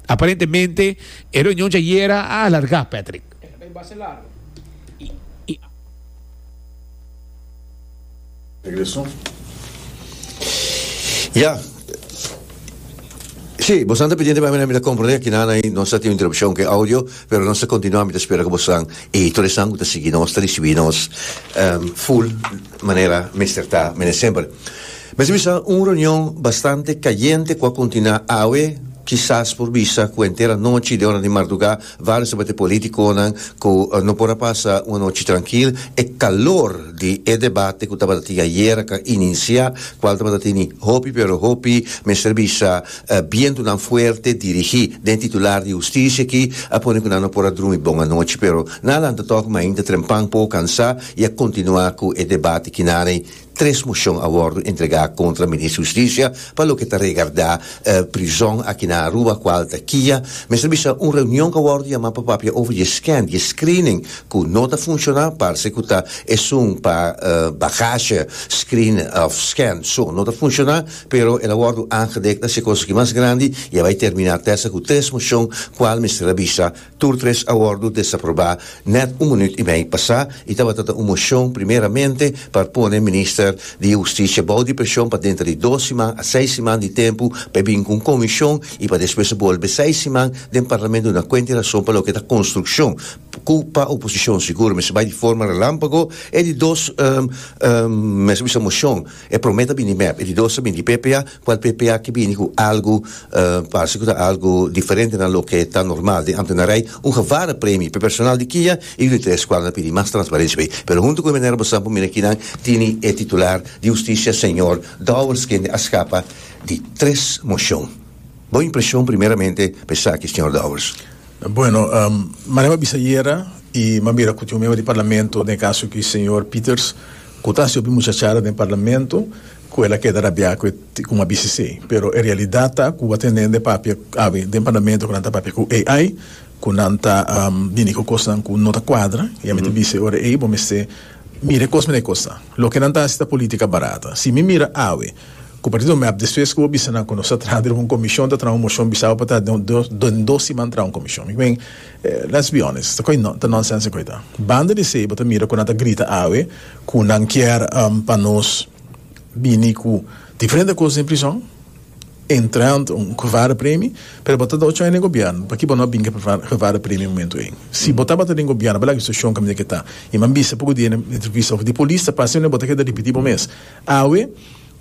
Aparentemente e reunion djayera a alarga, Patrick. Ya. Si, bosan ta pediente pa mi, mi ta comprende akinan ai nos ta tin un interrupcion ke audio, pero nos ta continua, mi ta spera ku bosnan i tur esnan ku ta sigui nos ta risibi nos full. manera mester ta, mene semper. Mester bisa un reunion bastante cayente cu a continua awe, kisas por bisa cu henter anochi den ora di mardugá varios di abate politiconan cu no por a pasa un anochi trankil, e calor di e debate cu tabatatin ayera can inicia, cual tabatatin ni hopi pero hopi, mester bisa bientonan fuerte dirigí den titular di husticia aki a pone cu nan no por a drumi bon anochi pero nan a lanta tok mainta trempan, poco cansá. i a kontinuá ku e debate kinaney tres moshon a wòrdu entregá kontra Minister Hustisia pa loke ta regardá prizòn aki na Aruba kual ta kia. Mester bisa un reunion ku a wòrdu yamá pa papia over dje scan, dje screening ku no ta funshoná, parse ku ta esun pa bagasje screen òf scan so no ta funshoná, pero el a wòrdu aangedekt na se kos aki mas grandi i a bai terminá tèsa ku tres moshon kual mester a bisa Tur tres a wòrdu desaprobá nèt un minuut i mei pasá i tabata ta un moshon primeramente pa pone minister di hustisia bou di preshon pa denter di dos siman a seis siman di tempu pa e bin ku un komishon i pa despues bolbe seis siman den parlamento duna kuenta i rason pa loke ta konstrukshon ku pa oposishon sigur mester bai di forma relámpago e di dos mester bisa moshon. E prome ta bini mep, e di dos ta bini di ppa, ku el ppa ke bini ku algu parse ku ta algu diferente na loke ta normal den Amtenarij, un gevare premi pe personal di kia i yu di tres kual na pidi mas transparensia bei. Pero huntu ku e manera bo sa bo mira kinan tini e titular di hustisia señor Dowers kende a skapa di tres moshon. Bo impreshon primeramente pa esaki señor Dowers? Bueno, manera mi a bisa ayera i mi a mira ku tin un miembro di Parlamento, den e kaso ku señor Pieters, Ku ta hasi hopi muchachada den parlamento ku el a keda rabiá ku e ticum a bici esei. Pero e realidat ta ku a tenden de papia awe den parlamento ku nan ta papia ku AI, ku nan ta bini ku kosnan ku no ta kuadra i a mester bici ora ei bo mester mira e kos mina e kos ta. Loke nan ta hasi ta politika barata. Si mi mira awe ku partido mep despues ku bo bisa nan ku nos ta traha riba un komishon ta traha un moshon bisa bo pa ta den dos siman traha un komishon. Mi ku men Let's be honest, ta nonsense koe ta. Banda di esei bo ta mira ku nan ta grita awe ku nan kier pa nos bini ku diferente kos den prison, entre ante un gevare premi, pero bo ta da ochon den gobièrnu, paki bo no a bin ku e gevare premi momentu ei? Si bo tabata den gobièrnu tabata lak e situashon kaminda ke ta. I mi a bisa poku dia na entrevista, òf di polis ta pasa bo ta keda ripiti bo mes. Awe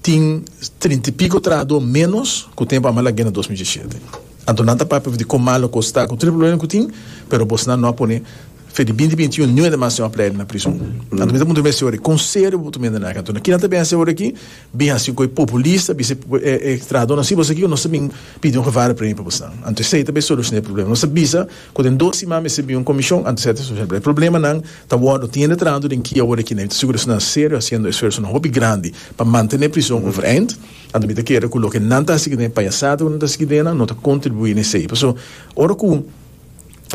Tin trinta i pico trahadó ménos cu tempu a malag'é na dos mil diecisiete. Anto nan ta papia di con malo cos ta cu tur e probleman cu tin, pero bosnan no a pone fe di binti binti i un niu hende mas tin un apleide na prizon. Anto mi ta puntra mester ahora, con serio bo ta mende na aki? Anto na kinan ta bens'e ahora aki? Bin haci goi populista, bisa e trahadónan, si bo sa aki cu nos ta bin pidi un gevaardepremio pa bosnan. Anto esei ta bay solucion'é e probleman. Nos ta bisa. Cu den dos siman mi sibi un comision anto seta su celebra e problemanan ta wordo tiende tranto den ki awor e kina mi ta segura esnan serio haciendo esfuersonan hopi grandi pa mantene prison overeind anto mi ta kere cu loke nan ta haci den e payasata cu nan ta haci ki dennan no ta contribui na esey paso ora cu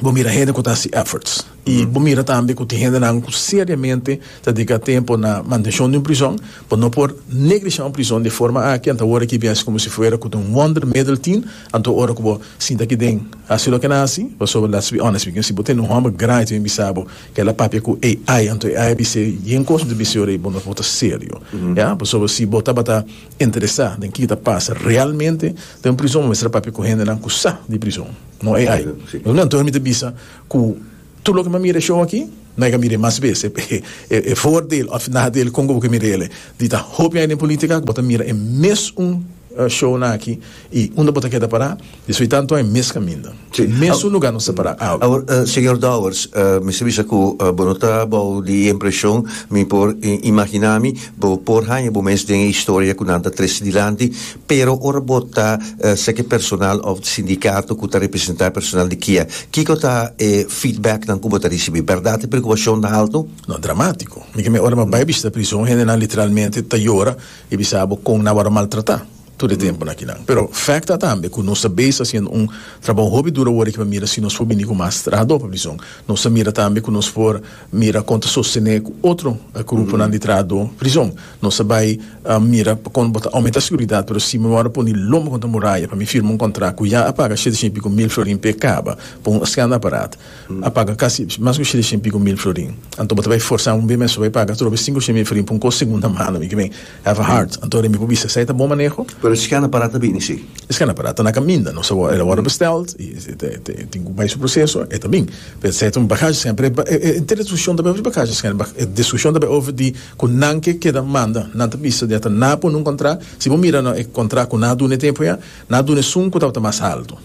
bo mira hende cu ta haci efforts y bo mira tambe cu tin hendenan cu seriamente ta dedica tempo na mantencion di un prison bo no por neglisha un prison di e forma aki anto awor aki biasi como si fuera cu ta un wonder middle tin Anto ora ku bo sinta ki den hasi loke nan hasi, pasobra let's be honest mi kinsí bo tene un hòmber grandi ta bin bisa bo ku el a papia ku AI, anto AI a bis'é yen kos mi ta bis'é ora i bo no por ta serio, ya, pasobra si bo tabata interesá den kiko ta pasa realmente den prizon bo mester a papia ku hendenan ku sa di prizon, no AI. Anto ora mi ta bisa ku. Tur loke mi a mira e show aki, no hay ke a mira e mas bes. E voordeel of nadeel kon ku bo ke mira el e di ta hopi hay den politica ku bo ta mira e mesun shownan aki y unda bo ta keda para y soy tanto hay mes kaminda. Mesun lugar nos ta para. Awor, Señor Dowers, mester bisa ku bo no ta bou di e impresion. Mi por imagina mi bo por haña bo mes den e historia ku nan ta trese dilanti, Pero ora bo ta seki personal of sindikato ku ta representá e personal di kia, kiko ta e feedbacknan ku bo ta risibí? Bèrdat e preokupashon ta altu? No, dramátiko. Mi ke me ora mi a bai bishita prison, hendenan literalmente ta yora i bisa bo kon nan a wòrdu maltratá tur e tempunan akinan. Pero fèkt ta tambe ku nos ta bes hasiendo un trabou hopi duru awor ikba mira si nos por bini ku mas trahadó pa prison. Nos ta mira tambe ku nos por mira kon ta sostené ku otro gruponan di trahadó prison. Nos a bai mira pa kon bo ta oumenta siguridad, pero si mi wou a pone lomba kontra muraya pa mi firma un kontrakt ku ya a paga shete shen i piko mil florin p'e kaba pa un scan aparat, a paga kasi mas ku shete shen i piko mil florin. Anto bo ta bai forsa un BMS pa bai paga atrobe sinku shen mil florin pa un kos segunda mano? Mi kiben have a heart. Anto remi bo bisa, esei ta bon maneho? Pero e scan aparat ta bini si? E scan aparat ta na kaminda. Nos a wou el a wòrdu besteld i e tin ku bai su proseso, e ta bin. Pero esei ta un bagashi scan, pero e destrushon ta bai over di bagashi scan, e destrushon ta bai over di. Ku nan ke keda manda, nan ta bisa dia ta na pone un kontrá. Si bo mira na e kontrá ku nan a duna e tempu ya, nan a duna esun ku tabata mas haltu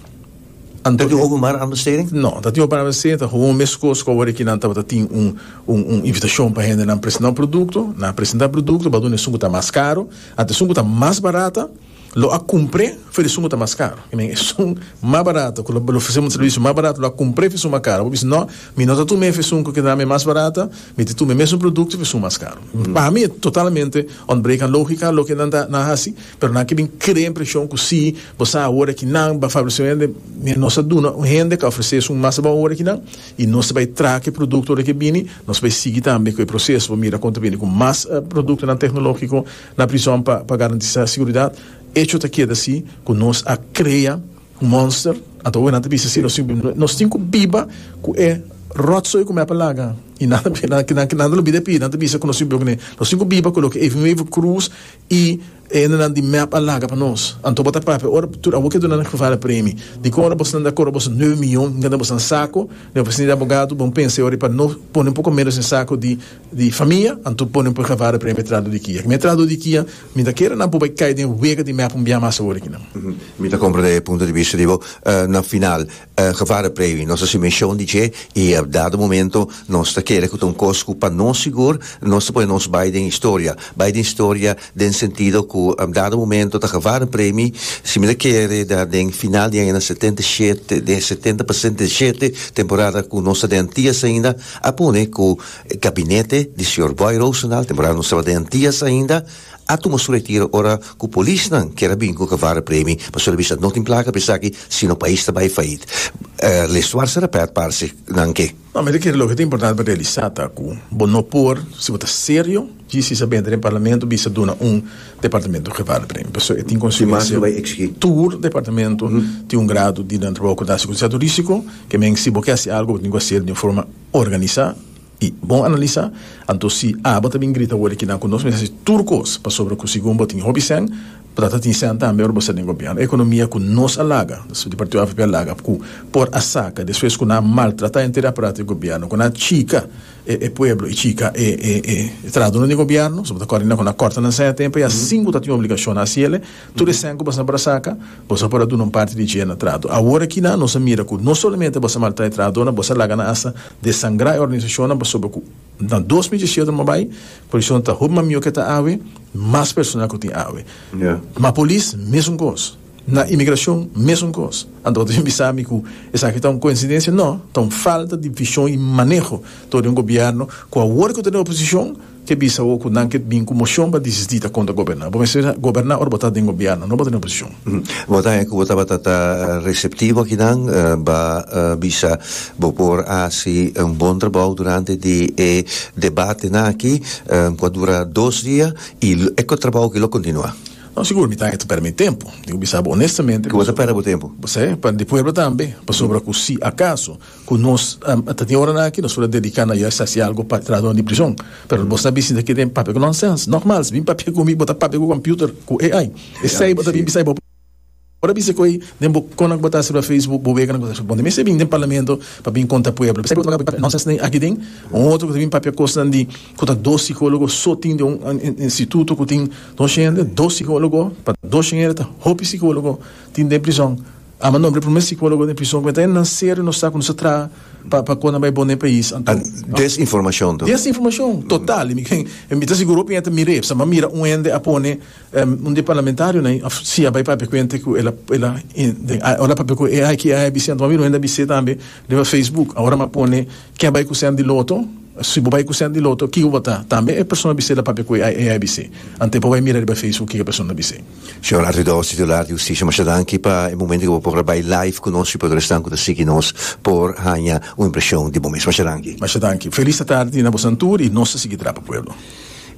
anto. Ta tin openbare anbesteding? No, ta tin openbare anbesteding, ta houn meskos ku awor ki nan tabata tin un un invitashon pa hende nan presentá un produkto. Nan a presentá produkto, bo a duna esun ku ta mas karu anto esun ku ta mas barata. lo a cumpre fe di su muta mas caro. I men esun mas barato cu lo ofrece muta servicio mas barato lo a cumpre fe esun mas caro. Bo bisa no, mi no ta tume fe esun cu keda me mas barato, mi ta tume mesun producto fe esun mas caro. Pa mi e totalmente ontbreken logica loke nan ta nan haci, pero nan ke bin crea impresion cu si, bo sa awor aki nan ba favorece hende, mi nos a duna un hende ca ofrece esun mas bon awor aki nan y nos ta bay traha cu e producto ora cu e bini, nos ta bay sigui tambe cu e proceso pa mira con ta bini cu mas productonan tecnologico na prison pa pa garantisá siguridat, echo ta keda si ku nos a krea un monster, anto awe nan ta bisa si nos tin ku biba, nos tin ku biba ku e ròtsoe ku mep a laga i nan nan nan ta lo mira e pia nan ta bisa ku nos tin ku biba ku ne, nos tin ku biba ku loke even even krus i e hendenan di mep a laga pa nos, anto bo ta papia ora tur awor ke duna nan Geval e premi, di kon ora bo esnan ta kobra boso nueve miyon, bo ta keda boso nan sako, ne'e presidente di abogado, bon pensa e ora i pa no pone un poko menos den sako di. di famia, anto pone un purgavare p'e metrado di kia. Metrado di kia, mi ta kere nan por bai kai den wega di mèp un bia mas awor akinan. Mi ta komprende e punto di bista di bo. Na final, gevare previ, nos a hasi menshon di dje i dado momento nos ta kere ku ta un kos ku pa nos sigur nos ta pone nos bai den historia. Bai den historia den sentido ku dado momento ta gevare premi, si mi ta kere ta den final di aña setenta i shete, den setenta pa setenta i shete temporada ku nos ta den antias ainda a pone ku E gabinete di señor Boy Rosendaal, temporada nos tabata den Tias ainda, a tuma su retiro ora cu polisnan kier a bini cu cavara premi pasobra e bisa no tin placa pa esaki sino pais ta bay fayit. Les Suarse Rapert parce nan ke. No, mi ta kere loke ta importante pa realisa ta cu bo no por, si bo ta serio, djis isa benta den Parlamento bisa duna un departamento cavara premi pasobra e tin consecuencia tur departamento tin un grado di nan trabaho cu ta haci cu certo risico, ke men si bo ke haci algo bo tin cu haci el den forma. organisa y bon analisa, anto si abo ta bin grita worde kinan cu nos mester haci tur cos pasobra cu segun bo tin hopi cen, bo ta ta tin cen tambe ora bo sta den gobierno. E economia cu nos a laga, di partido avp a laga, cu por a saca despues cu nan a maltrata enter e aparato di gobierno, cu nan a chica e pueblo y chica e e e trahadornan di gobierno, so bo ta corda di nan cu nan a corta nan cen a tempo y asin cu ta tin obligacion na haci ele, Tur e sèn ku boso a por a saka, boso a por a duna un parti di dje na trato. Awor akinan nos a mira ku no solamente boso a maltrata e trabahadonan, boso a laga nan asta desangrá e organisashonnan pasobra ku na dos mil diesiotro nan bo a bai, kondishonnan ta hopi mas mihó ke ta awe, mas personal ku tin awe. Na polis mesun kos, na imigrashon mesun kos. Anto bo ta bin bisa mi ku esaki ta un koinsidensia? No, ta un falta di vishon i maneho tur di un gobièrnu ku awor ku ta den oposishon, Ke bisa bo ku nan ke bin ku moshon pa disistí ta konta goberná? Bo mester goberná ora bo ta den gobièrnu, no bo ta den oposishon. Bo ta haña ku bo tabata ta reseptivo aki nan ba bisa bo por hasi un bon trabou durante di e debatenan aki ku a dura dos dia i e trabou aki lo kontinuá. No, sigur mi ta haña pèrdè mi tempu. Tin ku bisa bo onestamente. Ku bo ta pèrdè bo tempu? Sí, pa di pueblo tambe, pasobra ku si akaso. Cu nos a tin ora aki nos por a dedica na juis haci algo pa tra nos di prison. Pero bo sa bisita aquí den papia cu nonsense. Normal, si bin papia cu mi bo ta papia cu computer, cu AI. Esey bo ta bin bisai bo por a bisa cu ey den bo cono cu bo ta haci riba Facebook, bo wega nan cu bo ta haci. Bo mester bin den Parlamento pa bin conta pueblo. Esey bo ta papia nonsense den aki den. Un otro cu ta bin papia cosnan di cu ta dos psicologo so tin den un instituto cu tin dos hende, dos psicologo pa dos hende ta hopi psicologo tin den prison. Ama no, e primer psicologo den prison cu e ta e nacer y no sa cu nos ta traha pa pa con nan bay bon den pais anto. An des informacion to. Des informacion total y mi ken y mi ta sigur hopi hende ta mira epsa mi a mira un hende a pone un di e parlamentario nan of si a bay papia cu hende cu el a el a den a ora papia cu ai ki ai a bisi anto mi a mira un hende a bisi tambe riba facebook awor mi a pone ken a bay cu cent di loto si bo bay cu cent di loto kiko bo ta tambe e persona a bisi el a papia cu ai ai a bisi anto e por bay mira riba facebook kiko e persona a bisi. Señor Arredós, titular di Husticia, masha danki pa e momento cu bo por a bay live cu nos y pa tur esnan cu ta sigui nos por haña un impresion di bo mes. Masha danki. Masha danki. Feliz atardi na bosan tur y nos ta sigui traha pa pueblo.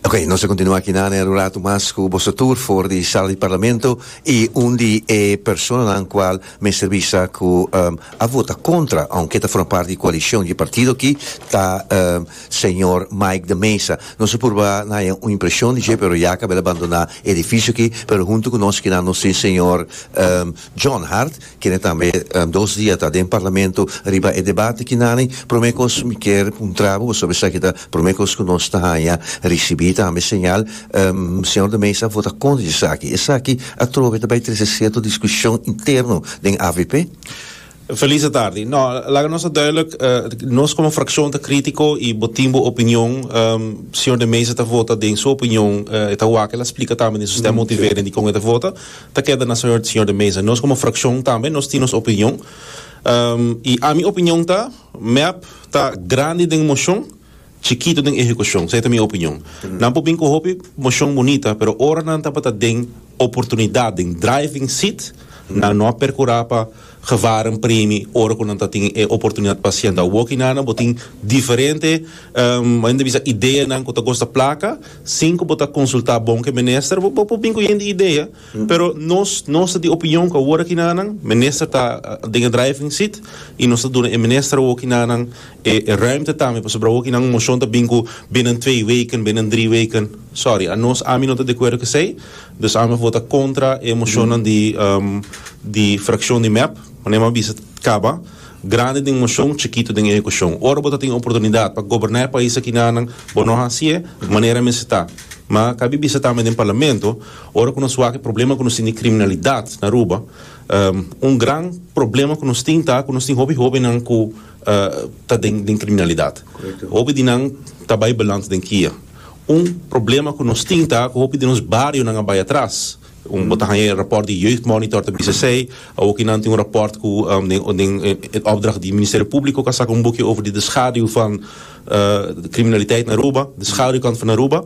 Ok, nos ta continua aki nan er un ratu mas cu boso tur for di sala di Parlamento y un di e personanan cual mester bisa cu a vota contra aunke ta forma parti di coalición di e partido aki ta señor Mike de Meza. Nos a purba na haña un impresion di dje pero ya caba el a bandona Edificio aki pero hunto cu nos kinan nos tin señor John Hart kende tambe dos dia ta den parlamento riba e debate kinani prome cos mi kier puntrabu boso be sa aki ta prome cos cu nos ta haya ricibi tambe señal señor de Meza a vota contra di esaki esaki atrobe ta bay trece cierto discusion interno den avp. Felice tardi. No, laga nos a duidelijk, nos como fraccion ta critico y bo tin bo opinion. Señor de Meza ta vota den su opinion, e ta wak el a splica tambe den su stem motiveren dikon e ta vota, ta keda na Señor de Meza. Nos como fraccion tambe nos tin nos opinion. Y ami opinion ta, mep ta grandi den mocion, Chikito den ehecucion, sa e ta mi opinion. Nan por bin cu hopi mocion bunita, pero ora nan tabata den oportunidad, den driving seat, nan no a percura pa gewaren premi ora cu nan ta tin e oportunidad pa haciendo. Awoki nana bo tin diferente, bo enta bisa ideanan cu ta gosta placa, sin cu bo ta consulta bon cu e minister, bo por bin cu yen di idea. Pero nos nos ta di opinion cu awor aki na nan minister ta den e driving seat y nos ta duna e minister awor aki na nan e ruimte tambe pasobra awor aki nan un mocion ta bin cu binnen twee weken binnen drie weken sorry anos ami no ta di acuerdo cu esey dus ami a vota contra e mocionnan di di fraccion di mep manera mi a bisa caba grandi den mocion chikito den ehecucion ora bo ta tin e oportunidad pa goberna e pais aki na nan bo no haci'e manera mester ta ma ca mi bisa tambe den parlamento. Ora ku nos wak e problema ku nos tin di kriminalidat na Aruba, un gran problema ku nos tin ta ku nos tin hopi hobennan ku ta den kriminalidat. Hopi di nan ta bai beland den kia. Un problema ku nos tin ta ku hopi di nos barionan a bai atras. Bo ta haña e rapòrt di Jeugdmonitor ta bisa esei. Awoki nan tin un rapòrt ku den e opdracht di Ministerio Públiko ku a saka un buki over di de schaduw van kriminaliteit na Aruba, de schaduwkant van Aruba.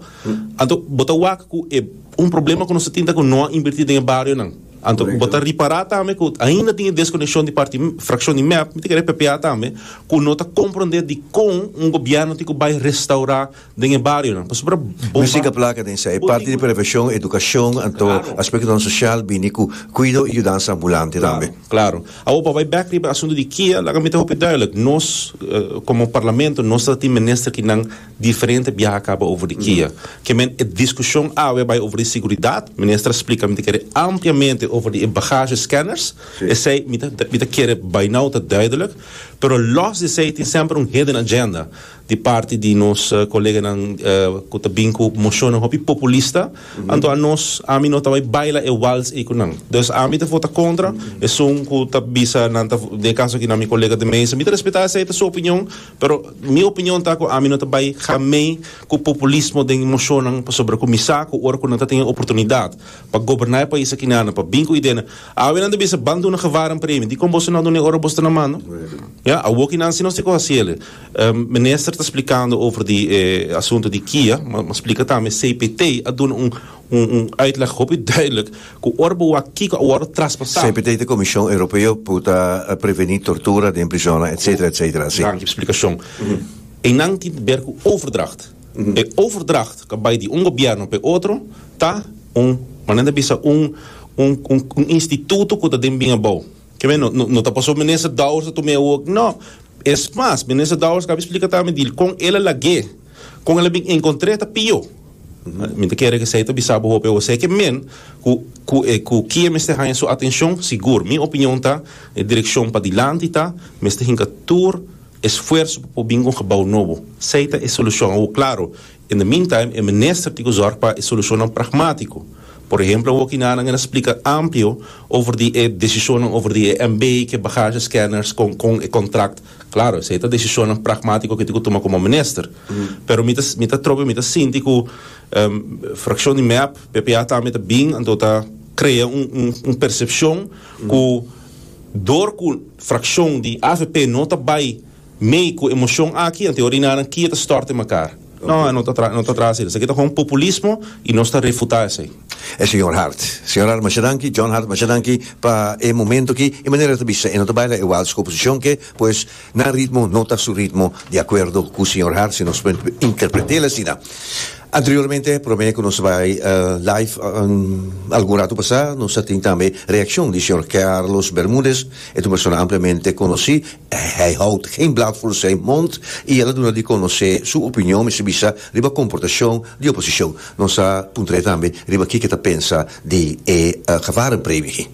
Anto bo ta wak ku e un problema ku nos ta tin ta ku no a invertí den e barionan. Anto bo ta ripará tambe ku ainda tin e deskonekshon di parti frakshon di mep, mi ta kere ppa tambe, ku no ta komprondé dikon un gobièrnu tin ku bai restaurá den e barionan. Pasobra bo bai. Músika plaka den esei parti di preveshon, edukashon, anto aspektonan sosial bini ku kuido i yudansa ambulante tambe. Klaro, klaro. Awo pa bai bèk riba e asuntu di kia, laga mi ta hopi dùilik. Nos komo parlamento nos ta tin minister kinan Diferente biaha kaba over di kia. Ke men e diskushon awe bai over di siguridat. Minister a splika mi ta kere ampliamente over di e bagasje scanners. Esei mi ta mi ta kere bai nau ta duidelijk. Pero los di esei tin semper un hidden agenda di parti di nos koleganan ku ta bin ku moshonnan hopi populista. Anto anos ami no ta bai baila e wals ei ku nan. Dus ami ta vota kontra. Esun ku ta bisa nan ta den e kaso aki na mi kolega de mesa. Mi ta respetá esei ta su opinion. Pero mi opinion ta cu ami no ta bay hamey cu populismo den mocionnan pasobra cu mi sa cu ora cu nan ta tin e oportunidad pa goberna e pais aki nan pa bin cu ideanan awe nan ta bisa ban duna Guevara un premio dicon boso no dun'e ora boso ta na mano? Ya awo ki nan si nos tin cu haciele. Minister ta splicando over di e asunto di kia ma splica tambe cpt a duna un Un un uitleg hopi duidelijk ku ora bo wak kiko a wòrdu traspasá. CPT ta Komishon Europeo ku ta Prevení Tortura den Prisonnan etc. Etc. Asi. Danki splikashon. Einan tin te ber ku overdracht. E overdracht ku a bai di un gobièrnu pa e otro ta un, ku nan ta bisa, un un un instituto ku ta den bin abou. Ke men no no ta paso Minister Dowers ta tuma e wok. No. Es mas, Minister Dowers kabi splika ta mi di kon el a lag'é. Con el a bin encontre ta pio. Mi ta kere cu esey ta bisa bo hopi awor. Seke men cu cu e cu kie mester haña su atencion, sigur, mi opinion ta e direccion padilanti ta mester hinca tur esfuerzo pa por bin cu un gebouw nobo. Esey ta e solucion. Awor, claro, in the meantime e minister tin cu zorg pa e solucionnan pragmatico. Por ehemplo, awor ki na nan e na splica amplio over di e decisionnan over di e MB, cu e bagage scanners, con con e contract. Claro, esei ta decisionnan pragmatico cu mi tin cu tuma como minister. Pero mi ta mi ta trobe, mi ta sinti cu fraccion di mep, ppa tambe ta bin anto ta crea un un un percepcion cu dor cu fraccion di avp no ta bay mey cu e mocion aki anto e orinanan kie ta storte mekar. No, e no ta traha, no ta traha asina. Esaki ta hon populismo y nos ta refuta esey. E señor Hart. Señor Hart masha danki, John Hart masha danki pa e momento aki. E manera e ta bisa e no ta baila e wals ku oposicion ke pues nan ritmo no ta su ritmo di acuerdo ku señor Hart si nos por interpretel asina. Anteriormente prome ku nos bai live algun rato pasa nos a tin tambe reaccion di señor Carlos Bermudez e ta un persona ampliamente conoci Hij houd geen blad voor zijn mond i el a duna di konosé su opinion, mester bisa, riba komportashon di oposishon. Nos a puntraé tambe riba kiko e ta pensa di e gevaren premio aki.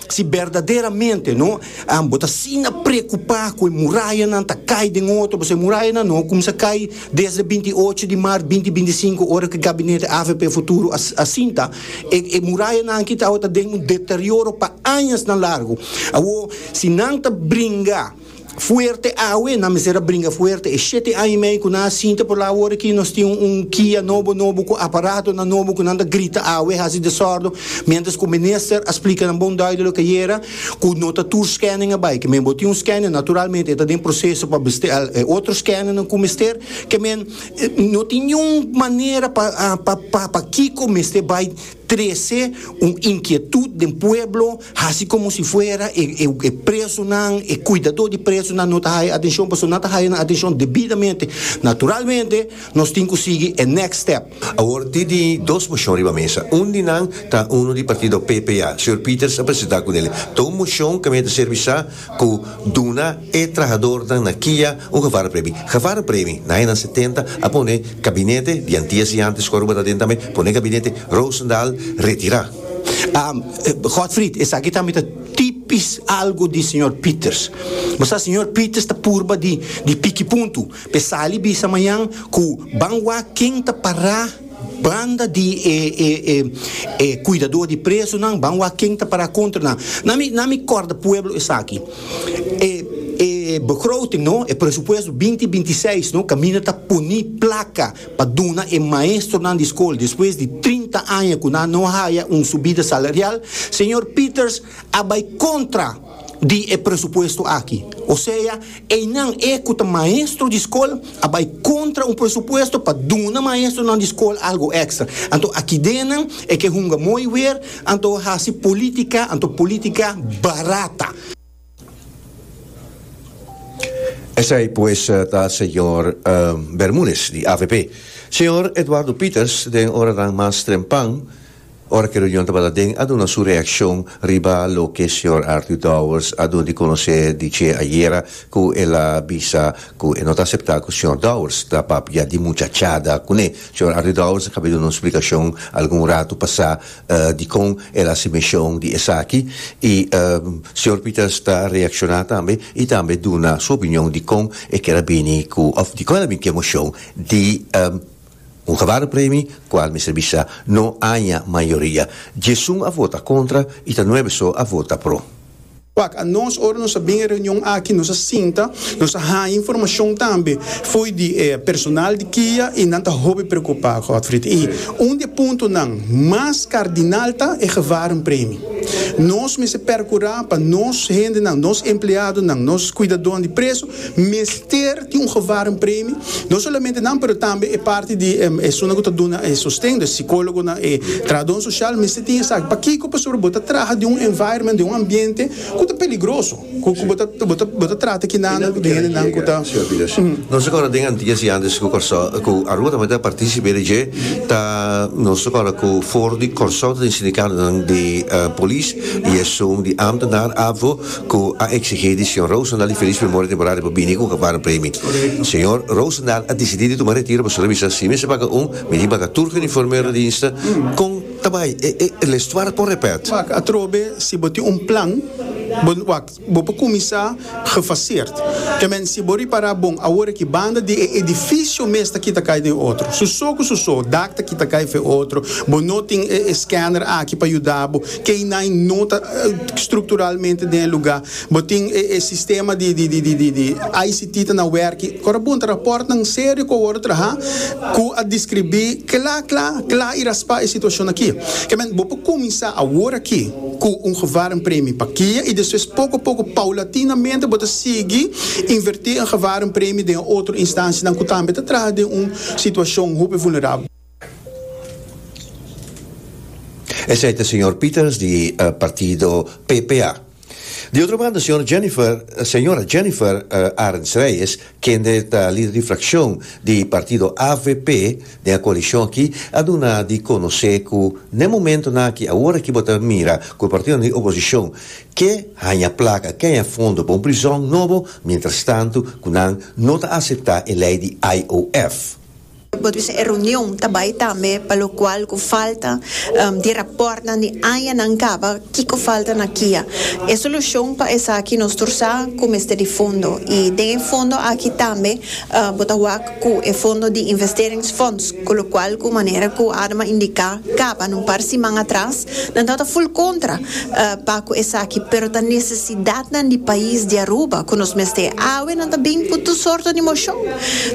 Si berdaderamente no, bo ta asina preokupá ku e murayanan ta kai den otro, pasobra e murayanan no kumsa kai desde binti ocho di mart binti binti sinku, ora ku e gabinete avp Futuro a sinta. E murayanan aki awo ta den un deterioro pa añasnan largu. Awo, si nan ta bringa fuerte awe, nan mester a bringa fuerte. E shete aña i mei ku nan a sinta por la awor aki, nos tin un kia nobo nobo ku aparatonan nobo ku nan ta grita awe, hasi desòrdo, miéntras ku minister a splika nan bon dùidu loke yera ku no ta tur skènen a bai. Kemen bo tin un skènen, naturalmente e ta den proseso pa besteá e otro skènennan ku mester. Kemen. No tin niun manera pa pa pa kiko mester bai trece un inquietud den pueblo haci como si fuera e e e presonan e cuidador di presonan no ta haya atencion pasobra nan ta haya nan atencion debidamente naturalmente nos tin cu sigui e next step. Awor tin di dos mocion riba mesa un di nan ta uno di partido PPA señor Peters a presenta cu nel ta un mocion caminda ta servi sa ku duna e trahadornan na Kia un gevarpremi. Gevarpremi na añanan setenta a pone kabinete di Antia si antes ku Aruba ta den tambe pone kabinete Rosendaal retirá. Godfried, Esaki tambe ta tipis algu di señor Pieters. Bo sa señor Pieters ta purba di di piki puntu. P'e sali bisa mañan ku ban wak ken ta pará. Banda di e e e e cuidador di presonan ban wak ken ta para contra nan. Na mi na mi corda pueblo esaki. E e begroting no, e presupuesto binti binti seis no caminda ta poni placa pa duna e maestronan di scol despues di trinta aña cu nan no haya un subida salarial, señor Peters a bai kontra di e presupuesto aki. Osea, einan, e ku ta maestro di skol, a bai kontra un presupuesto pa duna maestronan di skol algu èkstra. Anto akidenan e ke hunga moi wer, anto hasi polítika, anto polítika barata. Esei pues ta señor Bermúdez di avp. Señor Eduardo Pieters den oranan mas trempan, Ora cu e reunion tabata den a duna su reaccion riba loke Sr. Arthur Dowers a duna di conoce di dje ayera cu el a bisa cu e no ta acepta cu Sr. Dowers ta papia di muchachada cune. Sr. Arthur Dowers a cabe duna un splicacion algun ratu pasa di con el a hasi mencion di esaki y Sr. Peters ta reacciona tambe y tambe duna su opinion di con e kier a bini cu of di con el a bini cu e mocion di Un gebaru premi cual mester bisa no aña mayoria. Diesun a vota contra y ta nuebe so a vota pro. Wak a nos ora nos a bin e reunion aki nos a sinta, nos a haña informacion tambe fo'i di e personal di kia y nan ta hopi preocupa, Godfried. Y un di e puntonan mas cardinal ta e gebaru premi. Nos mester percura pa nos hendenan, nos empleadonan, nos cuidadonan di preso mester tin un gevarem premi, no solamente nan pero tambe e parti di esunnan cu ta duna e sosten, e psicologonan, e trahadon social mester tin esaki. Pakico? Pasobra bo ta traha den un environment, den un ambiente cu ta peligroso, cu bo ta bo ta trata kinanan cu tin hendenan cu ta. Nos ta kòrda den antias i antes ku Kòrsou ku Aruba tambe ta partisipe di dje ta nos ta kòrda ku for di Kòrsou ta tin sindikatonan di polis i esun di ámtenaar avo cu a exigi di Señor Roosendaal di Feliz Memoria Temporaria di por bini cu un campana premi. Señor Roosendaal a dicidi di tuma retiro pasobra bisa si mester baga un, mi tin baga tur cu uniforme rediensta, con ta bay e e e lestuar con repet. Wak, atrobe si bo tin un plan, bo wak, bo por cuminsa gefaseerd. Temen si bo ripara bon awor aki banda di e edificio mes ta kita cay den otro. Su so cu su so, dak ta kita cay fe otro, bo no tin e e scanner aki pa yuda bo. keinan no ta strukturalmente den e lugá. Bo tin e e sistema di di di di di ICT ta na wèrk'i. Kor a punta rapòrtnan serio ku a wòrdu trahá ku a deskribí kla kla kla i raspá e situashon akí. Ke men bo por kuminsá aworakí ku un gewarm premi pa kia i despues poko poko paulatinamente bo ta sigui invertí e gewarm premi den otro instansianan ku tambe ta traha den un situashon hopi vulnerabel. Esei ta señor Peters di partido PPA. Di otro banda señor Jennifer, señora Jennifer Arends-Reyes, kende ta lider di fraccion di partido avp den a coalicion aki, a duna di conoce cu n'e momentonan aki, awor aki bo ta mira cu e partidonan di oposicion ke haña placa, ke haña fondo pa un prizon nobo, mientrastantu cu nan no ta acepta e ley di IOF. Bo ta bisa e reunion ta bai tambe pa lo cual cu falta di raportnan di añanan caba kico falta na kia. E solucion pa esaki nos tur sa cu mester di fondo y den e fondo aki tambe bo ta wak cu e fondo di investeringsfonds cu lo cual cu manera cu Adema indica caba na un par siman atras Nan ta ta full contra pa cu esaki, pero ta necesidadnan di pais di Aruba cu nos mester. Awe nan ta bin cu tur sorto di mocion,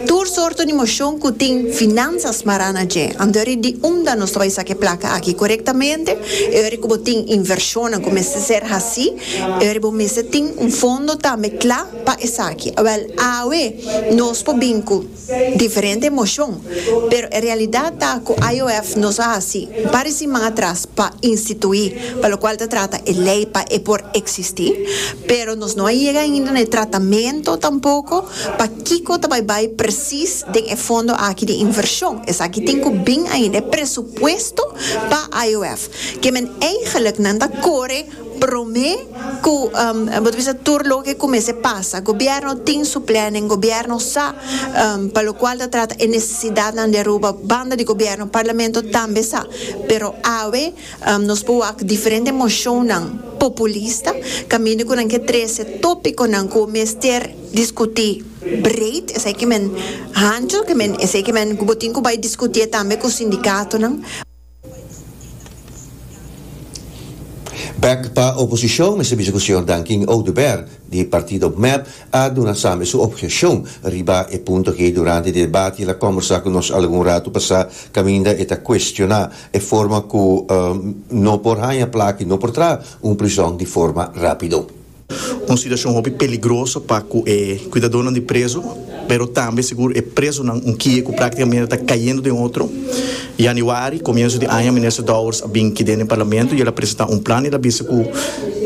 tur sorto di mocion cu tin finanza smará na dje. Antori di unda nos ta bay saca e placa aki corectamente? E ora cu bo tin inversionnan cu mester ser haci, e ora bo mester tin un fondo tambe cla pa esaki. Awel, awe nos por bin cu. diferente emoshon, pero e realidat ta ku IOF no sa hasi pare siman atras pa instituí, pa lokual ta trata e lei pa e por eksistí, pero nos no a yega ainda na e tratamentu tampoko pa kiko ta bai bai presis den e fondo aki di invershon. Esaki tin ku bin ainda e presupuesto pa IOF, ke men eigeliknan ta kore Prome cu bo ta bisa tur loke cu mester pasa. Gobierno tin su plannen, gobierno sa pa locual ta trata e necesidadnan di Aruba, banda di gobierno, Parlamento tambe sa. Pero awe nos por wak diferente mocionnan populista caminda cu nan ke trece topiconan cu mester discuti breed, esey cu men hancho, esey cu men cu bo tin cu bay discutié tambe cu sindicatonan. Bek pa oposishon mester bisa ku señor Dankin Oduber di partido mep a duna sambe su opgeshon riba e punto aki durante debati el a kombersá ku nos algun ratu pasá kaminda e ta kuestioná e forma ku no por haña plaki no por traha un prison di forma rápido. Un situashon hopi peligroso pa ku e kuidadónan di prezu, pero tambe sigur e prezunan un kie ku práktikamenta ta kayendo den otro. Yanüari, komienso di aña, Minister Dowers a bin ki den e Parlamento i el a presentá un plan i el a bisa ku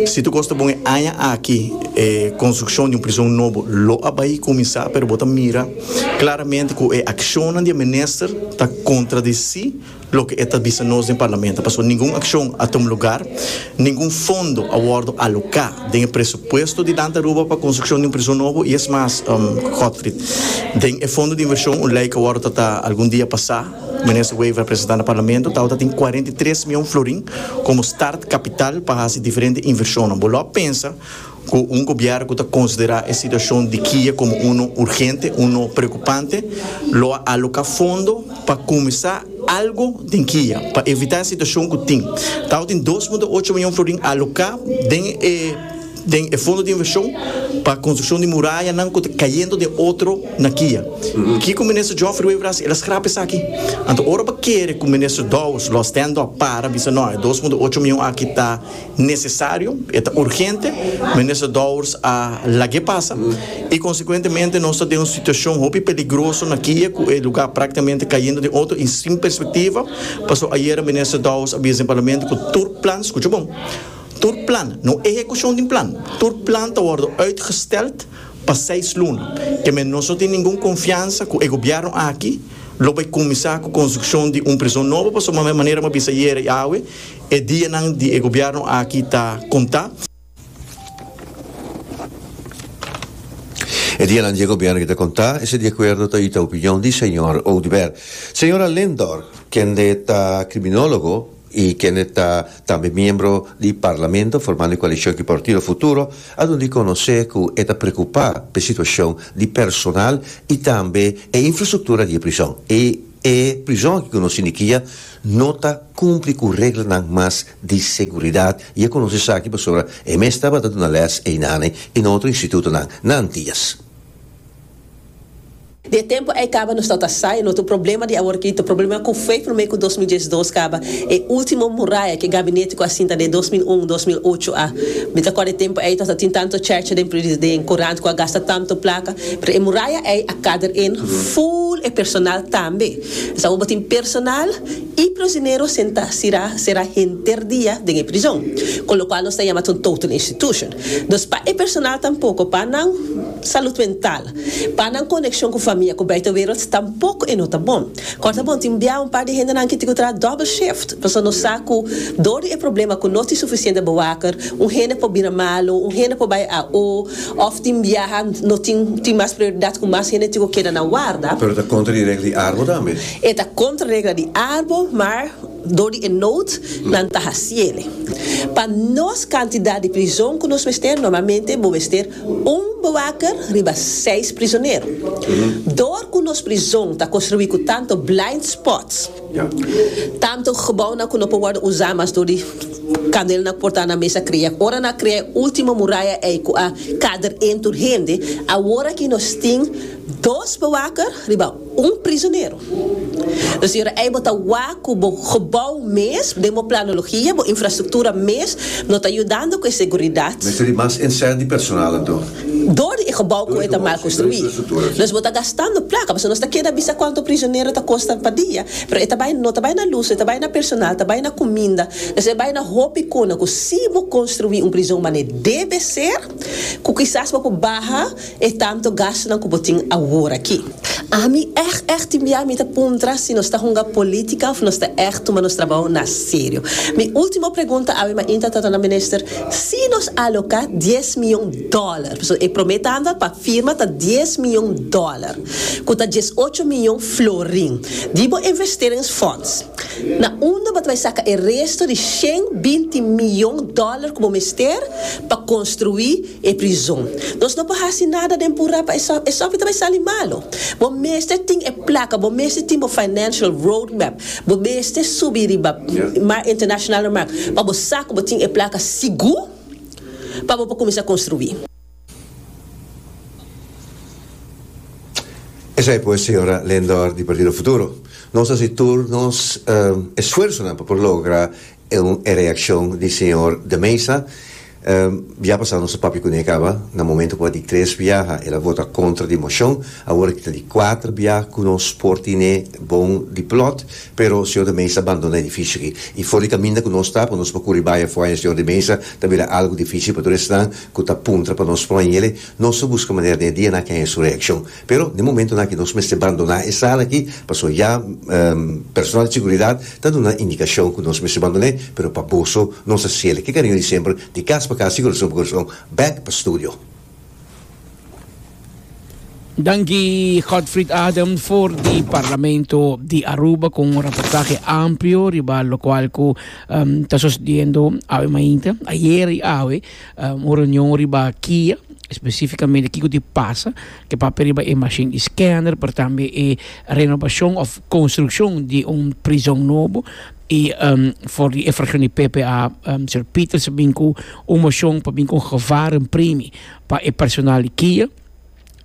si tur kos ta bon e aña aki e konstrukshon di un prizon nobo lo a bai kuminsá, pero bo ta mira klaramente ku e akshonnan di e minister ta kontradisí Loke e ta bisa nos den Parlamento pasobra ningun akshon a tuma lugar, ningun fondo a wòrdu aloká den e presupuesto di Dante Aruba pa konstrukshon di un prison nobo i es mas, Godfrid, den e fondo di invershon un lei ku a wòrdu tratá algun dia pasá, Minister Wever a presentá na Parlamento, tabata tin kuarenta i tres mion florin komo start kapital pa hasi diferente invershonnan. Bo lo a pensa. Cu un gobierno cu ta considera e situacion di Kia como uno urgente, uno preocupante, lo a aloca fondo pa cuminsa algo den Kia, pa evita e situacion cu tin. Tabo tin dos punto ocho mion florin aloca den e den e fondo di inversion pa construccion di murayanan cu ta cayendo den otro na Kia. Kico Minister Geoffrey Wever a haci? El a scrapa esaki. Anto ora bo kere cu Minister Dowers lo a stand up para bisa no, e dos punto ocho mion aki ta necesario, e ta urgente, Minister Dowers a lag'e pasa y consecuentemente nos ta den un situacion hopi peligroso na Kiye cu e lugar practicamente cayendo den otro y sin perspectiva, pasobra ayera Minister Dowers a bisa den Parlamento cu tur plan, scucha bon, tur plan, no ehecucion di un plan, tur plan ta wordo uitgesteld pa seis luna, kemen nos no tin ningun confiansa cu e Gobierno aki lo bay cuminsa cu construccion di un prison nobo, pasobra manera m'ha bisa ayera y awe, E dianan di e gobierno aki ta conta. E dianan di e gobierno aki ta conta, esei di acuerdo ta y ta opinion di señor Oduber. Señora Lindor, kende ta criminologo y kende ta tambe miembro di Parlamento formando e coalicion ki Partido Futuro, a duna di conoce cu e ta preocupa p'e situacion di personal y tambe e infrastructura di e prison. E e prison aki cu nos indikia, no ta cumpli cu reglanan mas di seguridad y e conoce esaki pasobra e mes tabata duna les eynane y na otro institutonan na Antillas. Di e tempo ey caba nos tata sa y no tin problema di awor ki ta problema cu fue prome cu dos mil diesdos caba e ultimo muraya cu e gabinete cu a sinta den dos mil un, dos mil ocho a. Mi ta cor e tempo ey nos a tin tanto cherche den den curant cu a gasta tanto placa pero e muraya ey a cader en full e personal tambe. Esnan ku bo tin personal i prisionero sentá sirá será henter dia den e prizon, kon lokual nos ta yama ta un total institution. Dus pa e personal tampoko, pa nan salud mental, pa nan konekshon ku famia, ku buitenwereld tampoko e no ta bon. Kòr ta bon tin bia un par di hendenan ki tin ku traha double shift, pasobra nos sa ku dor di e problema ku no tin sufisiente bewaker, un hende por bira malu, un hende por bai AO, Òf tin biaha no tin tin mas prioridat ku mas hende tin ku keda na warda. Pero ta kontra di regla di arbo tambe. E ta kontra regla di arbo, maar dor di e nood nan ta hasiele. Pa nos kantidat di prizon ku nos mester normalmente bo mester un bewaker riba seis prizonero. Dor ku nos prizon ta konstruí ku tantu blind spots. Tantu gebounan ku no por wòrdu usá mas dor di kandelnan ku por ta na mesa krea. Ora nan a krea e último muraya ei ku a kader en tur hende, awor aki nos tin dos bewaker riba un prizonero. Lo siñora ei bo ta wak ku bo gebou mes den bo planologia, bo infrastruktura mes no ta yudando ku e seguridat. Mester di mas en sènt di personalnan tur. Dor di e gebou ku e ta mal konstruí. Nos bo ta gastando plaka, pasobra nos ta keda bisa kuantu prisionero ta kosta pa dia. Pero e ta bai, no ta bai na lus, e ta bai na personal, ta bai na kuminda. Nos e bai na hopi kona ku si bo konstruí un prizon mane debe ser, ku kisas bo por baha e tantu gastunan ku bo tin awor aki. Ami ègt ègt tin bia mi ta puntra si nos ta hunga polítika òf nos ta ègt tuma nos trabou na serio. Mi último pregunta awe mainta ta torná minister, si nos aloká dies mion dòler, pasobra e promé tanda pa firma ta dies mion dòler, ku ta dies ocho mion florin, di bo investeringsfonds, na unda bo ta bai saka e resto di shen binti mion dòler ku bo mester pa konstruí, e prizon. Nos no por hasi nada den pura pa esòf, esòf i ta bai sali malu. Bo mester tin e plaka, bo mester tin bo financial road map, bo mester subi riba mar internashonal na mar pa bo sa ku bo tin e plaka sigur pa bo por kuminsá konstruí. Esei pues, señora Lindor di Partido Futuro, nos hasi tur nos esfuersonan pa por logra Eun e reaccion di señor de Meza. Bia pasa nos a papia cune caba. Na momento cua di tres biaha el a vota contra di mocion. Awor ki ta di cuater biaha cu nos por tine bon di plot. Pero señor de Meza bandona edificio aki. Y for di caminda cu nos ta pa nos por curi bay afua en señor de Meza ta bira algo dificil patur esnan cu ta puntra pa nos pon ayele. Nos a busca manera den e dianan kenha e su reaccion. Pero den momentonan aki nos mester bandoná e sala aki pasobra ya personal di seguridat ta duna indikashon ku nos mester bandon'é, pero pa boso nos a siel ke kariño di semper di kas pa kas, di korason pa korason bèk pa studio. Danki Godfrid Adam for di Parlamento di Aruba ku un reportahe amplio riba lokual ku ta sosediendo awe mainta, ayer i awe. Un reunion riba kia especificamente kico di pasa ke papia riba e machine scanner pero tambe e renovacion of construccion di un prison nobo y for di e fraccion di ppa Sir Peters a bin cu un mocion pa bin cu un gevaren primi pa e personal di kia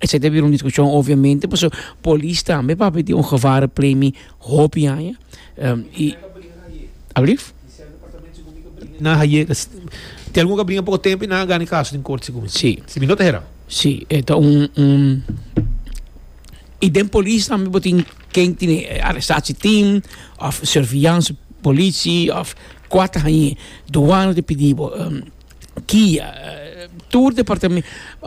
esey ta bira un discusion obviamente pasobra polis tambe papia di un gevaren primi hopi aña y. Alblieft. Nan haye ka si tin algun ka bringa poko tempo y nan a gana e caso den corte segun mi. Sí. Si mi no ta hera. Sí, e ta un, un, y den polis tambe bo tin ken tin e arrestatie team of surveillance polici of cua ta haye, douane ta pidi bo, kia, tur departamen,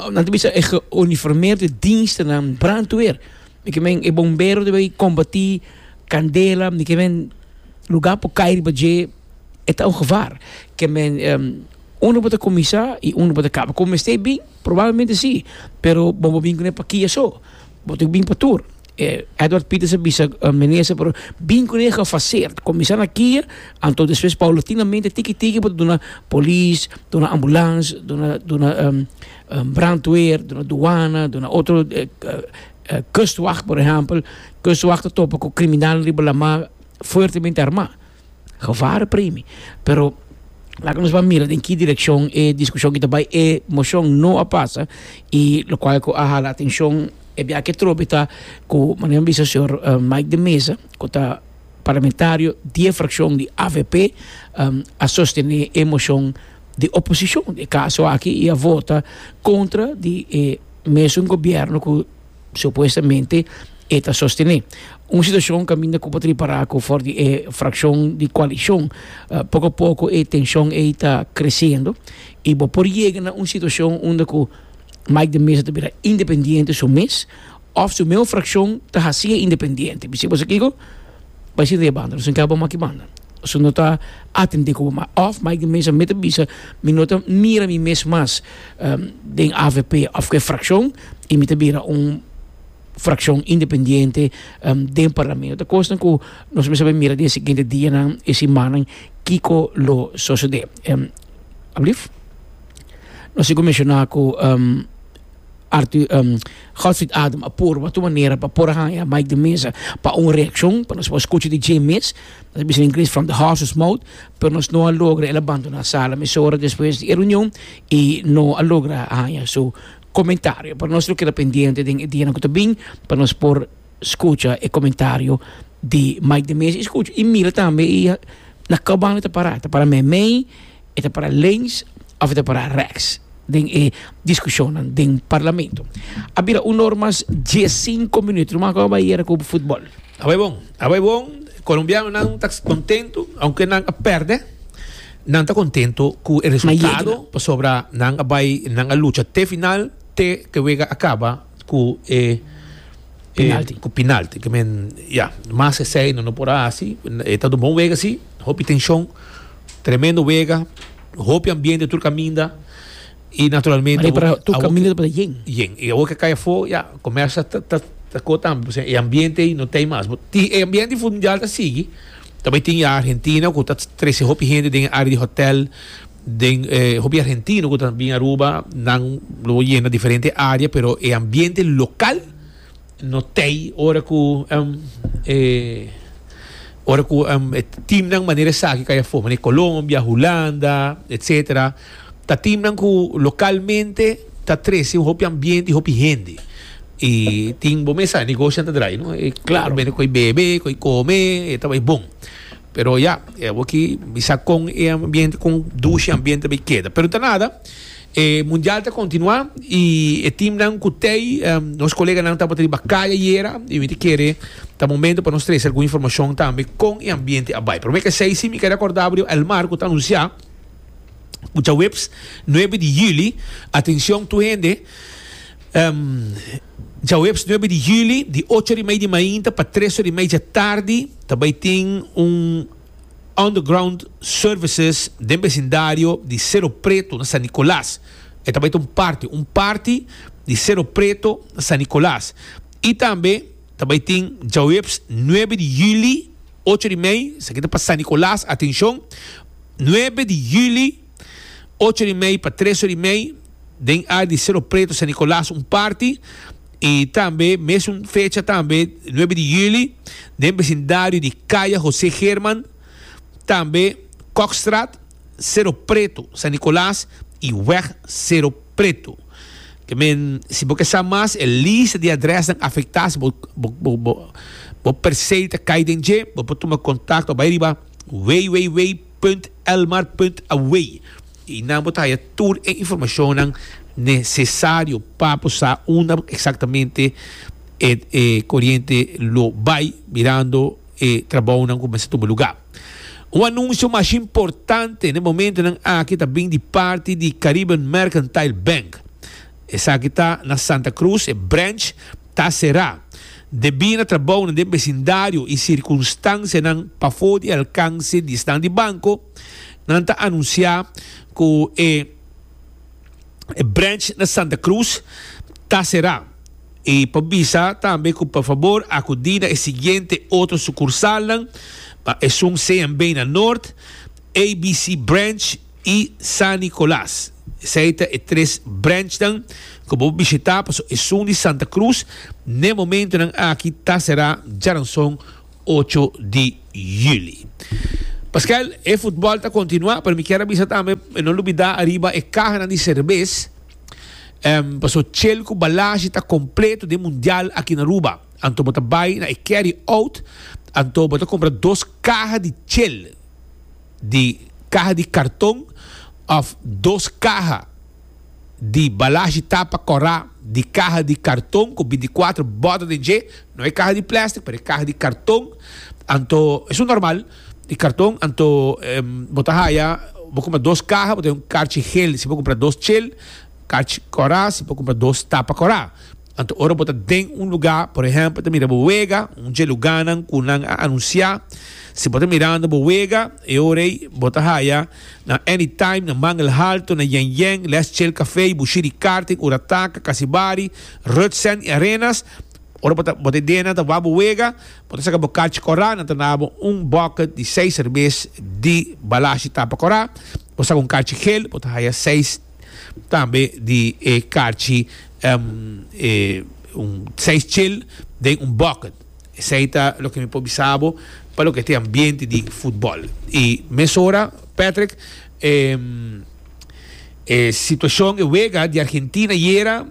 nan ta bisa e geuniformeerde dienstenan, brandweer, mi ke men e bombero ta bay combati candela, mi ke men. Lugar por cay riba dje e ta un gevaar. Ke men uno bo ta cuminsa y uno bo ta caba. Con mester bin? Probablemente si, pero bo bo bin cu ne pakia so. Bo tin cu bin pa tur. Edward Peters a bisa meneer pero bin cu ne gefaseerd. Cuminsa na kia, anto despues paulatinamente tiki tiki bo ta duna polis, duna ambulance, duna duna brandweer, duna douana, duna otro kustwacht por ehempel. Kustwacht ta topa cu criminal riba la mar. fuertemente armá. Gevare primi. Pero laga nos ban mira den ki direkshon e diskushon ki ta bai. E moshon no a pasa i lokual ku a hala atenshon e biaha ke trobe ta ku manera mi bisa señor Mike de Meza ku ta parlamentario di e frakshon di avp a sostené e moshon di oposishon den e kaso aki i a vota kontra di e mesun gobièrnu ku Supuestamente e ta sostene un situacion caminda cu por ta ripara cu for di e fraccion di coalicion poco a poco e tension ey ta crecendo y bo por yega na un situacion unda cu Mike de Meza ta bira independiente su mes of su mesmo fraccion ta haciye independiente. Mi sigue kiko? Bay sinta e banda no sinta bo maki banda su no ta atende cu bo of Mike de Meza mita bisa mi no ta mira mi mes mas den avp of cu e fraccion. y mi ta bira un fraccion independiente den parlamento ta cosnan cu nos mester a mira den e siguiente dianan y simannan kico lo socede alblieft nos tin cu menciona cu Arthur Godfrid Adam a purba tur manera pa por a haya Mike de Meza pa un reaccion pa nos por scucha di dje mes nos a bisa den ingles from the horses mouth pero nos no a logra el a bandona sala mesora despues di e reunion y no a logra haya su comentario pero nos lo keda pendiente den e dianan cu ta bin pa nos por scucha e comentario di Mike de Meza y scucha y mira tambe y na cab banda e ta para ta para meimei e ta para links of e ta para rechts den e discusionnan den parlamento a bira un or mas dies cinco minuto lo mas cu a bay ayer cu footbal. A bai bon, a bai bon. Colombianonan ta contento aunke nan a perde. Nan ta contento cu e resultado pasobra nan a bai, nan a lucha te final, te cu e wega a caba cu e Penalti. cu penalti. Cu men, ya, mas e esey no, no por a haci. E ta un bon wega si, hopi tension, tremendo wega, hopi ambiente tur caminda. Y naturalmente awor ki tur caminda tabata yen. Yen. Y awor ke kai afo, ya, comersa ta ta co tambe, pasobra e ambiente ey no t'ey mas. Bo tin e ambiente di fútbol mundial ta sigui, ta bay tin ya Argentina cu ta trece hopi hende den e área di hotel, den e hopi argentino cu ta bin Aruba, nan lo yena diferente área, pero e ambiente local no t'ey ora cu e ora cu e teamnan manera esaki kai afo, manera Colombia, Hulanda, etcetera. Ta timnan cu localmente ta trece un hopi ambiente y hopi hende. Y tin, bo mesa, negocinan ta draai, no? E claro, bende cu e bebe, cu e come, e ta bay bon. Pero ya, e abo aki, mi sa con e ambiente, con dushi e ambiente ta bay keda. Pero ta nada, e Mundial ta continua y e timnan cu tey, em, nos coleganan tabata riba caya ayera y mi ta kere, ta momento pa nos trece algun informacion tambe con e ambiente a bay. Pero mi a k'e say si mi keda acordaba riba Elmar cu ta anuncia, Djaweps nuebe di juli, atencion tur hende, Djaweps nuebe di juli di ocho or i mei di mainta pa tres or i mei dje tardi ta bai tin un Underground Services den besindario di Sero Preto na San Nicolas. E ta bai ta un parti, un parti di Sero Preto na San Nicolas. I tambe ta bai tin Djaweps nuebe di juli ocho or i mei, esaki ta pa San Nicolas, atencion, Nuebe di juli, ocho di mei pa tres or di mei, den área di Sero Preto, San Nicolas un parti, i tambe mesun fecha tambe, nuebe di juli, den besindario di Kaya José German, tambe Kokstraat, Sero Preto, San Nicolas i Weg Sero Preto. Ke men, si bo ke sa mas e lista di adrèsnan afektá, si bo bo bo bo bo persei ta kai den dje, bo por tuma kontakto, bai riba. www.elmar.away y nan bo ta haya tur e informacionnan necesario pa bo sa unda exactamente e e coriente lo bay mirando e trabounan cu mester tuma lugar. Un anuncio mas importante n'e momentonan aki ta bin di parti di Caribbean Mercantile Bank. Esaki ta na Santa Cruz e branch. ta será debí na trabounan den besindario i sirkunstansianan pafó di alkanse di esnan di banko, nan ta anunsiá ku e branch na Santa Cruz ta será i por bisa tambe ku pa fabor akudí na e siguiente otro sukursalnan, esun CMB na Nort, ABC Branch, i San Nicolas. Esei ta e tres branchnan ku bo por bishitá paso esun di Santa Cruz n'e momentunan aki ta será djaranson ocho di juli. Pascual, e futbòl ta kontinuá, pero mi kier a bisa tambe no lubidá ariba e kahanan di serbes, paso chel ku balashi ta kompleto den mundial aki na Aruba. Anto bo ta bai na e carry out, anto bo ta kompra dos kaha di chel. di kaha di karton òf dos kaha di balashi tapa kòrá di kaha di karton ku bintikuatro bòda den dje, no e kaha di plèstik pero e kaha di karton, anto es un normal di karton anto bo ta haya bo kumpra dos kaha bo ta haya un karchi hel si bo kumpra dos chel, karchi kòrá si bo kumpra dos tapa kòrá. Anto ora bo ta den un lugá, por ehèmpel ta mira bo wega, un dje lugánan ku nan a anunsiá, si bo ta mirando bo wega, e ora ei bo ta haya na Anytime, na Mangel Halto, na Yen Yen, Les Chel Café, Bushi di Karting, Urataka, Kasibari, Rutsen i Arenas. Ora bo ta bo ta idenan ta wak bo wega, bo ta saka bo karchi kòrá, nan ta nabo un bòkket di seis serbes di balashi tapa kòrá, bo saka un karchi hel, bo ta haya seis. Tambe di e karchi un seis chil den un bucket. Esei ta loke mi por bisa bo pa loke ta e ambiente di futbol. I mesora Patrick e e situacion, e wega di Argentina ayera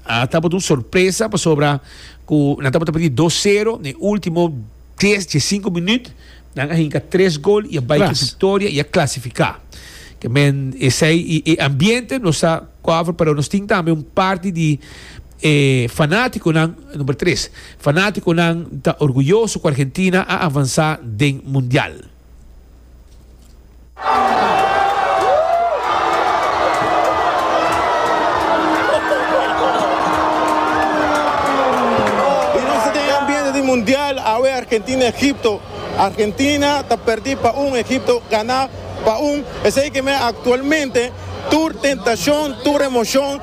a tabata un sorpresa pasobra cu nan tabata perdí dos sero na e ultimo Des dje sinku minüt nan a hinka tres gol i a bai ku viktoria i a klasifiká. Kemen esei i e ambiente nos sa kover pero nos tin tambe un parti di e fanátikonan, number tres, fanátikonan ta orguyoso ku Argentina a avansá den mundial. Y nos ta den e ambiente di mundial awe Argentina Egipto. Argentina ta perdi pa un Egipto gana pa un. Esey ke mira actualmente tur tentacion, tur emocion.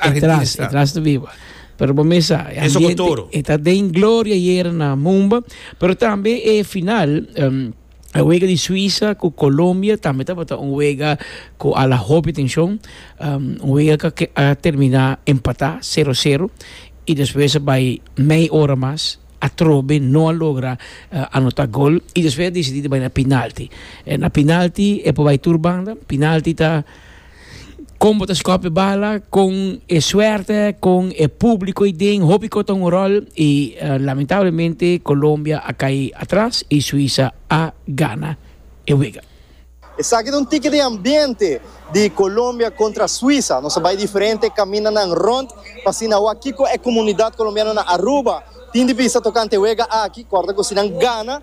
Argentina está. Etras, etras viva. Pero bo mesa, e Eso ambiente, toro. e ta den gloria ayer na Mumba, pero tambe e final, um, e wega di Suiza ku Colombia tambe tabata un wega ku ala hopi tension, um, un wega ka ke- a termina empatá 0-0 i despues a bai mei ora mas atrobe no a logra eh, anotá gol i despues a desidí di bai na penalti. Eh, na penalti e por bai tur banda, penalti ta Kon bo ta skòpi bala kon e suerte, kon e públiko ei den, hopi kos ta un ròl i lamentablemente Colombia a kai atras i Suisa a gana e wega. Esaki ta un tiki di ambiente di Colombia kontra Suisa. Nos a bai diferente kamindanan rònt pa asina wak kiko e komunidat kolombiano na Aruba tin di bisa tokante e wega aki, kòrda ku si nan gana.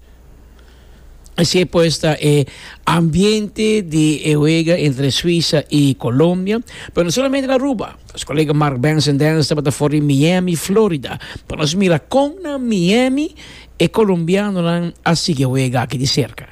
Esei pues ta e ambiente di e wega entre Suisa y Colombia, pero no solamente na Aruba. Nos colega Mark Benson Dance tabata for di Miami, Florida, pa nos mira con na Miami e Colombianonan a sigui e wega aki di cerca.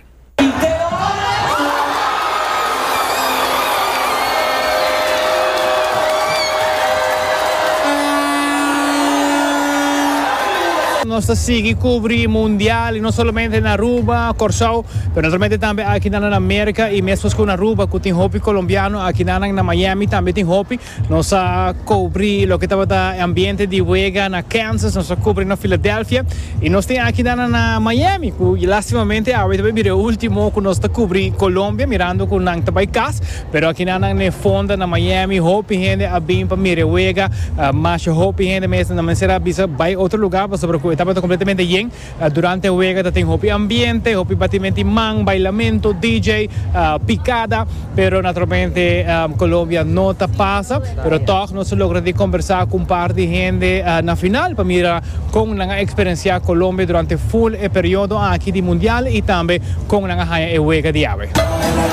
Nos ta sigui kubri mundial i no solamente na Aruba, Kòrsou, pero naturalmente tambe akinan na Merka i mescos ku na Aruba ku tin hopi kolombiano akinanan na Miami tambe tin hopi. Nos a kubri loke tabata e ambiente di wega na Kansas, nos a kubri na Filadelfia i nos tin akinan na Miami ku lastimamente awe ta bai bira e ultimo ku nos ta kubri Kolombia mirando ku nan ta bai kas. Pero akinan nan n'e fonda na Miami hopi hende a bin pa mira e wega, masha hopi hende mester na mester a bisa bai otro lugar pasobra ku e tabata kompletamente yen. Durante e wega ta tin hopi ambiente, hopi batimenti man, bailamento, DJ, pikada, pero naturalmente Colombia no ta pasa, pero tog nos a logra di kombersá ku un par di hende na final pa mira kon nan a eksperensiá Colombia durante ful e periodo aki di mundial i tambe kon nan a haña e wega di awe.